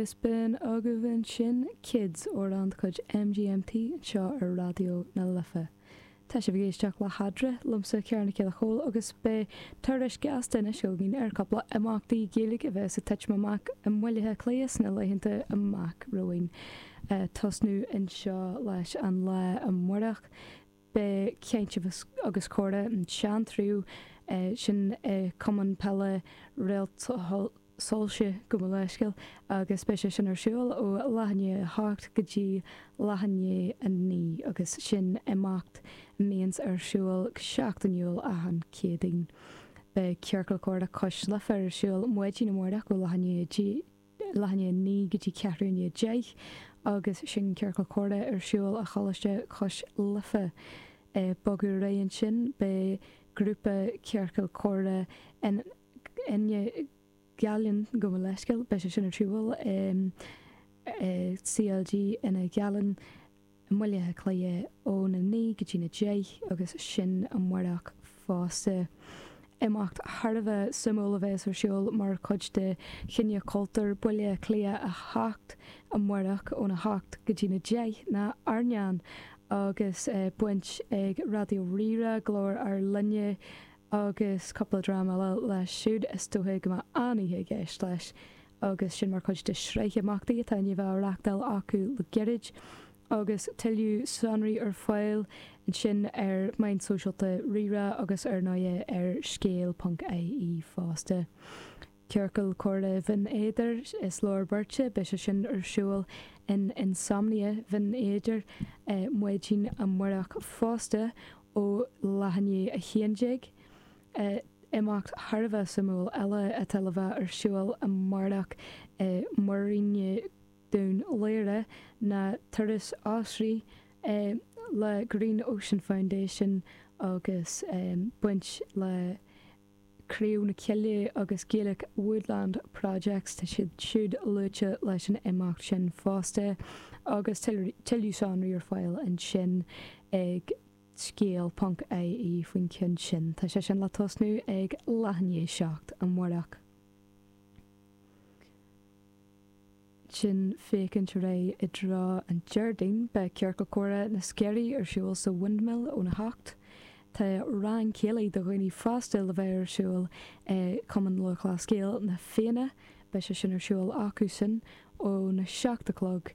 Is b'in agaibh ansin Kids amhrán de chuid MGMT anseo ar Raidió na Life. Tá sibh ag éisteacht le hEadra liomsa Ciarán Mac Giolla Chomhaill agus beidh tuairisc ghasta anois againn ar chupla imeachtaí Gaeilge a bheas ag titim amach i mBaile Átha Cliath sna laethanta amach romhainn. Tosnú anseo leis an lá amárach. Beidh Caint agus Comhrá an tSeantraibh sin i Cumann Peile Réaltsoilse, gabh mo leithscéal, agus beidh sé sin ar siúl ó leath i ndiaidh 8 go dtí leath i ndiaidh 9 agus sin imeacht a mbíonns ar siúl go seachtainiúil achan Céadaoin. Beidh Ciorcal Comhrá Cois Life ar siúl maidin amárach ó leath i ndiaidh 10 leath i ndiaidh 9 go dtí ceathrú i ndiaidh 10 agus sin ciorcal comhrá ar siúl i Choláiste Cois Life. Ag bogadh ar aghaidh ansin beidh grúpa ciorcal comhrá Fhine Ghallainn gabh mo leithscéal, beidh sé sin ar siúl i CLG Fhine Ghallainn, i mBaile Átha Cliath ó na naoi go dtí na deich agus sin amárach fosta. Imeacht thar a bheith suimiúil a bheas ar siúl mar chuid de Choinne Cultúir Bhaile Átha Cliath 8 amárach óna hocht go dtí na deich ná Airneán agus baint ag Raidió Rí-Rá, Glór Ár Linne agus cúpla dream eile leis siúd. Is dócha go mbeidh an-oíche i gceist leis. agus sin mar chuid de shraith imeachtaí atá i ndiaidh a bheith á reachtáil acu le gairid, agus tuilleadh sonraí ar fáil ansin ar mheáin sóisialta RíRá agus ar ndóigh ar Scéal.ie fosta. Ciorcal Comhrá Bhinn Éadair, Is Leor Beirt, beidh sé sin ar siúl in Insomnia Bhinn Éadair, Maidin Amárach fosta, ó leath i ndiaidh a haon déag. Imeacht thar a bheith suimiúil eile atá le bheith ar siúl amárach i muiríne Dhún Laoghaire ná Turas Oisrí le Green Ocean Foundation agus baint le Craobh na Coille agus Gaelic Woodland Projects, tá siad siúd luaite leis an imeacht sin fosta agus tuilleadh sonraí ar fáil ansin ag. Scéal.ie faoin cheann sin, tá sé sin le tosnú ag leath i ndiaidh 7 amárach. Sin féachaint ar aghaidh i dtreo an Déardaoin, beidh Ciorcal Comhrá na Sceirí ar siúl sa Windmill ón 8. Tá rang céilí do dhaoine fásta le bheith ar siúl i Cumann Lúthchleas Gael Na Fianna, beidh sé sin ar siúl acu sin ón 7 a chlog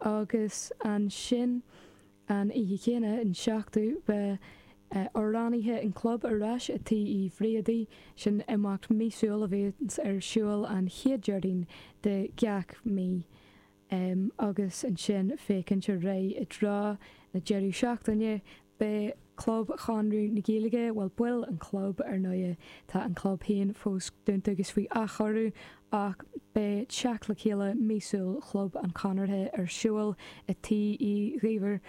agus ansin an oíche chéanna, an 7ú, beidh amhránaithe an chlub ar ais i Tí Uí Bhriadaí, sin imeacht míosúil a bhíonns ar siúl an chéad Déardaoin de gach mí, agus ansin féachaint ar aghaidh i dtreo na deireadh seachtaine Beidh Club Chonradh na Gaeilge, bhuel, baill an chlub, ar ndóigh, tá an club féin fós dúnta agus faoi athchóiriú, ach beidh teacht le chéile míosúil Chlub an Chonartha ar siúl i Tí Uí Dhuibhir,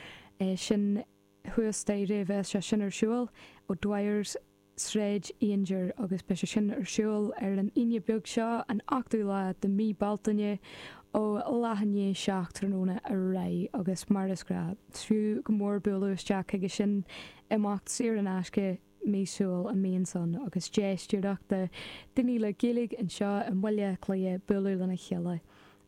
sin thuas staighre, beidh sé sin ar siúl, O'Dwyers, Sráid Aungier agus beidh sé sin ar siúl ar an Aoine beag seo, an 8ú lá de mí Bealtaine, ó leath i ndiaidh seacht tráthnóna ar aghaidh agus mar is gnáth, is fiú go mór bualadh isteach chuige sin. Imeacht saor in aisce, míosúil a mbíonn ann agus deis díreach do dhaoine le Gaeilge anseo i mBaile Átha Cliath bualadh lena chéile.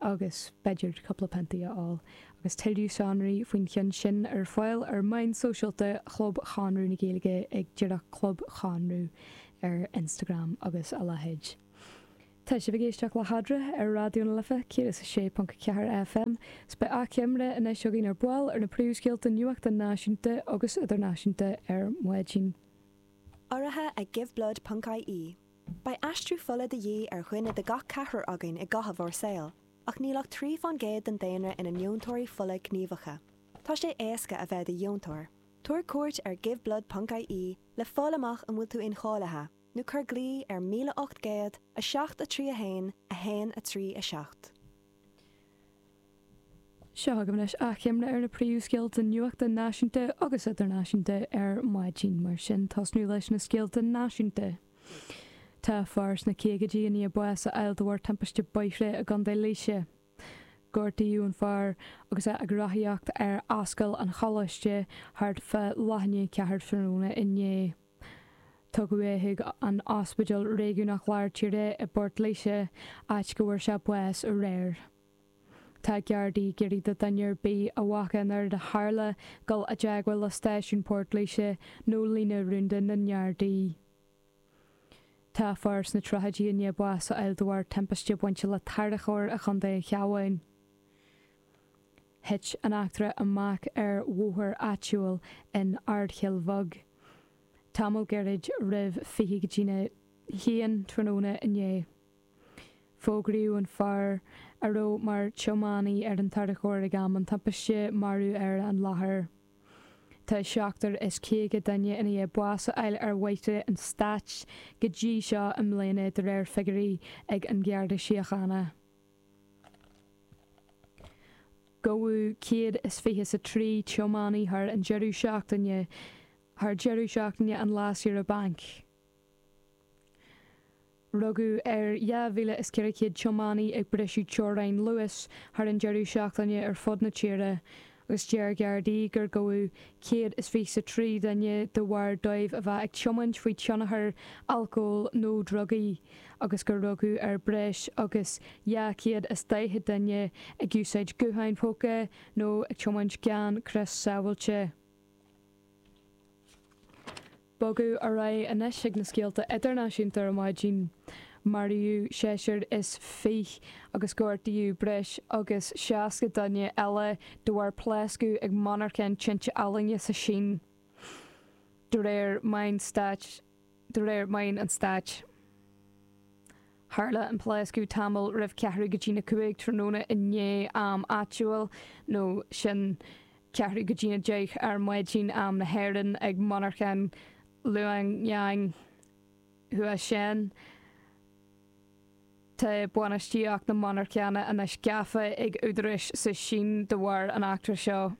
agus b'fhéidir cúpla piontaí a fháil, agus tuilleadh sonraí faoin cheann sin ar fáil ar mheáin sóisialta Chlub Chonradh na Gaeilge ag díreach Club Chonradh ar Instagram agus a leithéid. Tá sibh ag éisteacht le Fadhradharc ar Raidió na Life 106.4 FM is beidh achoimre anois againn ar ball ar na príomhscéalta nuachta náisiúnta agus idirnáisiúnta ar maidin. Urraithe ag Give Blood ponc-IE. Beidh aistriú fola de dhíth ar dhuine de gach ceathrar againn i gcaitheamh ár saoil, ach níl ach trí fán gcéad den daonra ina ndeontóirí fola gníomhacha. Tá sé éasca a bheith i do dheontóir. Tabhair cuairt ar giveblood ponc ie le fáil amach an bhfuil tú incháilithe, nó cuir glao ar 1800 7 3 1 1 3 7. Seo agaibh anois achoimre ar na príomhscéalta nuachta náisiúnta agus idirnáisiúnta ar maidin. Mar sin, tosnú leis na scéalta náisiúnta. Tá fear sna caogaidí i ndiaidh bás a fháil de bharr timpiste bóithre i gContae Laoise. Gortaíodh an fear agus é ag rothaíocht ar Ascaill an Choláiste thart fá leath i ndiaidh a ceathair tráthnóna inné. Tugadh é chuig an Ospidéal Réigiúnach Lár Tíre i bPort Laoise, áit go bhfuair sé bás aréir. Tá Gardaí ag iarraidh do dhuine ar bith a bhfaca an rud a tharla dul i dteagmháil le stáisiún Port Laoise nó líne rúnda na nGardaí. Tá fear sna tríochaidí i ndiaidh bás a fháil de bharr timpiste bainte le tarracóir i gContae an Chabháin. Thit an eachtra amach ar bhóthar áitiúil in Ardchoill Bheag, tamall gairid roimh fiche go dtí a haon tráthnóna inné. Fógraíodh an fear, a raibh mar tiománaí ar an tarracóir ag am an timpiste, marbh ar an láthair. Tá seachtar is caoga duine i ndiaidh bás a fháil ar bhóithre an stáit go dtí seo i mbliana, de réir figiúirí ag an nGarda Síochána. Gabhadh 123 tiománaí thar an deireadh seachtaine, thar deireadh seachtaine an lae saoire bainc. Rugadh ar 2,400 tiománaí ag briseadh teorainn luais thar an deireadh seachtaine ar fud na tíre agus deir Gardaí gur gabhadh 123 duine de bharr dóibh a bheith ag tiomáint faoi thionchar alcóil nó drugaí agus gur rugadh ar breis agus 240 duine ag úsáid gutháin póca nó ag tiomáint gan crios sábháilte. Bogadh ar aghaidh anois ag na scéalta idirnáisiúnta ar maidin, maraíodh seisear is fiche agus gortaíodh breis agus seasca duine eile de bharr pléascadh ag monarcha tinte ealaíne sa tSín, de réir meáin stáit, de réir meáin an stáit. Tharla an pléascadh tamall roimh ceathrú go dtí a cúig tráthnóna inné am áitiúil, nó sin, ceathrú go dtí a deich ar maidin, am na hÉireann, ag monarcha Liuyang Huasheng. Tá bainistíocht na monarchana anois gafa ag údaráis sa tSín de bharr an eachtra seo.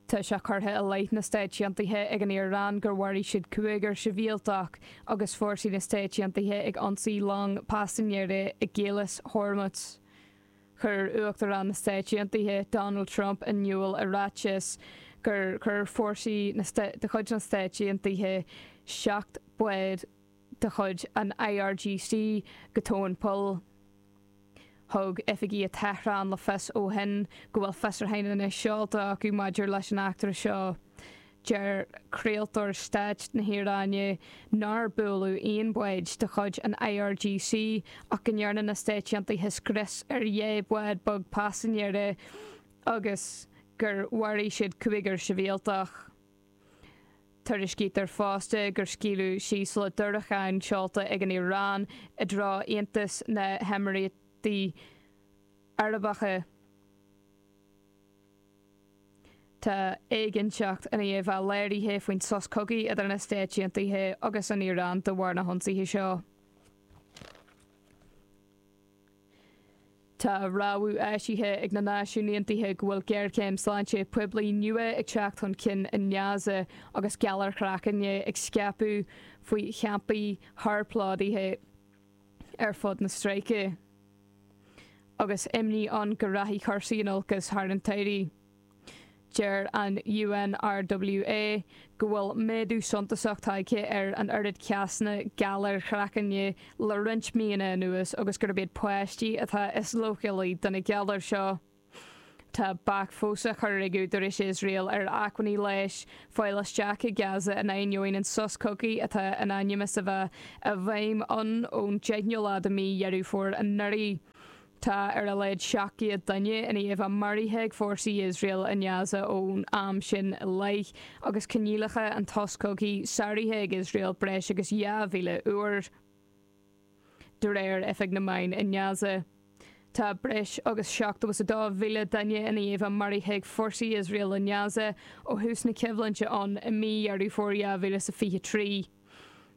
Tá sé curtha i leith na Stáit Aontaithe ag an Iaráin gur mharaigh siad cúigear sibhialtach agus fórsaí na Stáit Aontaithe ag ionsaí long paisinéirí i gCaolas Hormuz. Chuir Uachtarán na Stáit Aontaithe, Donald Trump, in iúl i ráiteas gur chuir fórsaí de chuid na Stáit Aontaithe seacht mbád, de chuid an IRGC go tóin poill. Thug oifigigh i Tehran le fios ó shin go bhfuil fiosrúchán anois seolta acu maidir leis an eachtra seo. Deir craoltóir stáit na hIaráine nár buaileadh aon bhád de chuid an IRGC ach go ndearna na Stáit Aontaithe scrios ar dhá bhád beag paisinéara agus gur mharaigh siad cúigear sibhialtach. Tuairiscítear fosta gur scaoileadh síos diúracháin seolta ag an Iaráin i dtreo Aontas na nÉimíríochtaí Arabacha. Tá éiginnteacht i ndiaidh a bheith léirithe faoin sos cogaidh idir na Stáit Aontaithe agus an Iaráin de bharr na hionsaithe seo. Tá rabhadh eisithe ag na Náisiúin Aontaithe go bhfuil géarchéim sláinte poiblí nua ag teacht chun cinn i nGaza agus galair chraicinn ag scaipeadh faoi champaí róphlódaithe ar fud na stráice, agus imní ann go rachaidh cúrsaí in olcas i rith an tsamhraidh. Deir an UNRWA go bhfuil méadú suntasach tagtha ar an oiread cásanna galar craicinn le roinnt míonna anuas agus gurb iad páistí atá is leochailí do na galair seo. Tá bac fós á chur ag údaráis Iosrael ar acmhainní leighis a fháil isteach i Gaza in ainneoin an sos cogaidh atá in ainm is a bheith i bhfeidhm ann ón deichiú lá de mhí Dheireadh Fómhair anuraidh. Tá ar a laghad 700 duine ina ndiaidh a maraithe ag fórsaí Iosrael i nGaza ón am sin i leith, agus coinníollacha an tsos cogaidh sáraithe ag Iosrael breis agus 2,000 uair, de réir Oifig na Meán i nGaza. Tá breis agus 72,000 duine ina ndiaidh a maraithe ag fórsaí Iosrael i nGaza ó thús na coimhlinte ann i mí Dheireadh Fómhair 2023.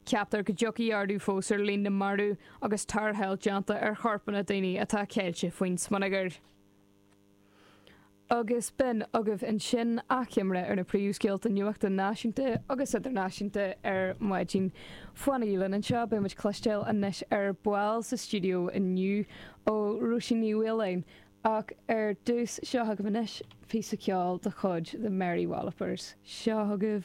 Ceaptar go dtiocfaidh ardú fós ar líon na marú agus tarrtháil déanta ar chorpanna daoine atá ceilte faoin smionagar. Agus b'in agaibh ansin achoimre ar na príomhscéalta nuachta náisiúnta agus idirnáisiúnta ar maidin. Fanaigí linn anseo beidh muid cloisteáil anois ar ball sa stiúideo inniu ó Róisín Ní Mhaoláin ach ar dtús seo agaibh anois píosa ceoil de chuid The Mary Wallopers. Seo agaibh.